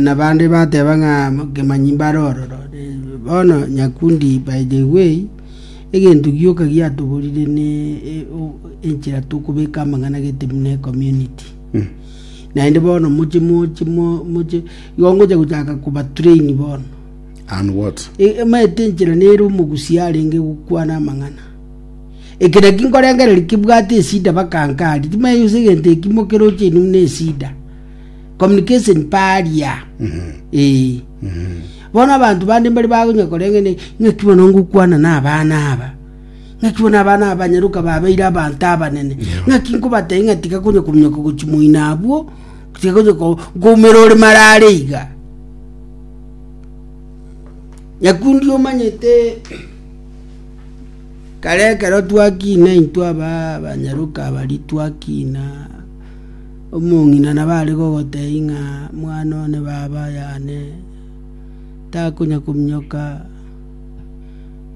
Nabande bateba ng'a kemanyi mbare ororo. Bono nyakundi by the way, egento gioka giatoborire ne enchera tokobeka amang'ana gete buna ecommunity. Naende bono moche moche moche igo ngocha gochaka koba train bono. And what? Emanyete enchera nere omogusia arenge gokwana amang'ana. Ekero ki nkorengereria kebwate esida baka nkari. Timanyeti gose egento ekimo keroche inwe buna esida. communication paria Eh. bono abanto bande mbari bagonya koreng'ana ng'aki bono ngokwana na abana aba ng'aki bono abana aba banyaroka babeire abanto abanene ng'aki nkobatebia ng'a tiga konya kominyoka gochia moino abwo tiga konya ko- koumera ore marare iga nyakundi omanyete kare ekero twakina intwe aba abanyaroka abari twakina Omong'ina nabo are gogotebia ng'a mwana one baba yane takonya kominyoka,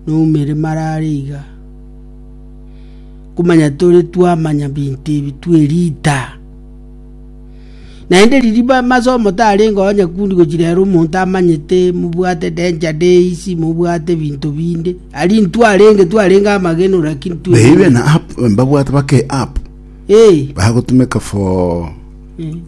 noumere marare iga. Komanya tore twamanya binto ebi twerita. Naende riria ba- masomo tarenge onye kundi gochia rero omonto amanyete mobwate danger days, mobwate binto binde, ari ntwarenge twarenge amagenore lakini twerita. Babe na app, mbabwate bake app. Eh, bagotumeka for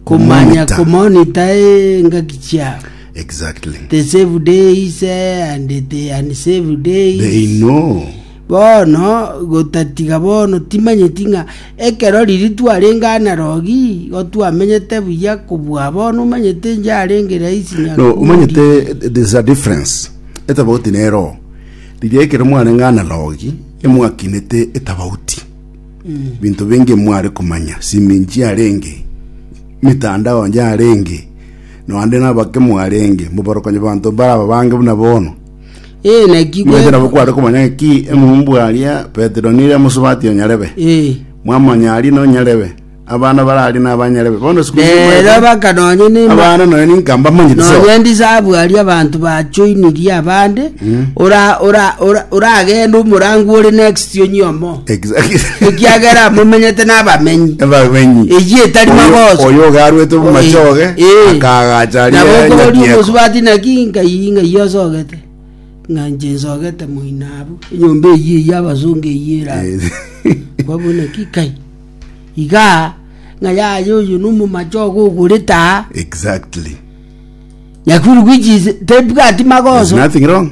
komanya kumonitor. komonita engaki chiabo. exactly The save days eh, and the unsave days. they know bono gotatiga bono timanyeti ng'a ekero riri twarenge anarogi gotwamenyete buya kobua bono omanyete njarenge raisi no nyakundi. umanyete there's a difference etabauti nero riria ekero mwarenge analogi emwakinete etabauti binto binge mware komanya, sime nchiarenge, mitandao nchiarenge, noande nabake mwarenge, moborokanye banto baraba bange buna bono. Ee, naki Mwete gwe- nabo kware komanya ki eng'umbu aria Petero nire amosubatie onyarebe. Ee. Mwamanya aria nonyarebe. Abana barari nabanyare be. Bono siku Nero bakanonya nima abana noyo ninka mbamanyete so. nonya ndisabu aria abanto bachoinirie abande ora- ora- ora- oragende omorango ore next onyomo Exactly. ekiagera amomenyete n'abamenyi Abamenyi. Eyio etari Oyo- magoso. Oyo ogarwete omomachoge Eh. akagacha aria nabo okobori Nyakieko. omosubati naki ngai ngai osogete ng'a nche nsogete moinabu enyomba eyio eyio abasonga eyio eraba Eh. kwabona ki kai iga, ng'a yaya oyo nomomache ogo ogorete aa, Exactly. Nakuru which is tebwati There's magoso. nothing wrong.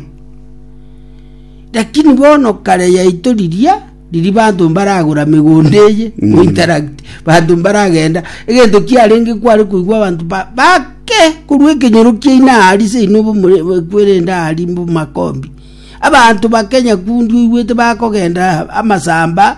Lakini bono kare yaito riria riri banto mbaragora megondo eye Mm. mm. interact banto mbaragenda egento kiarenge kware koigwa abanto ba- bake korwa ekenyoro kiaino ari seino kwerende ari mbo makombi abanto bakenya kundi oigwete bakogenda amasamba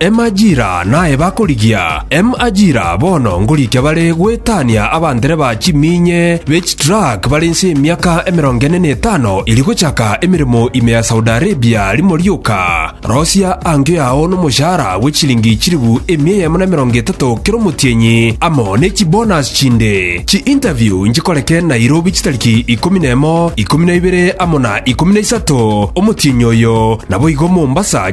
Emajira naye bakorigia emajira bono ngorikia bare goetania abandereba chiminye be chitruck bare inse y'emiaka emerongo ene na etano eri gochaka emeremo ime ya Saudi Arabia rimo rioka. Rosia angio yao n'omoshahara bwe chilingi chilifu emia eyemo na emerongo etato kera omotienyi amo ne chibonus chinde. Chi-interview nchikoreke Nairobi chitariki ikomi na emo, ikomi na ibere amo na ikomi na isato omotienyi oyo, naboigo Mombasa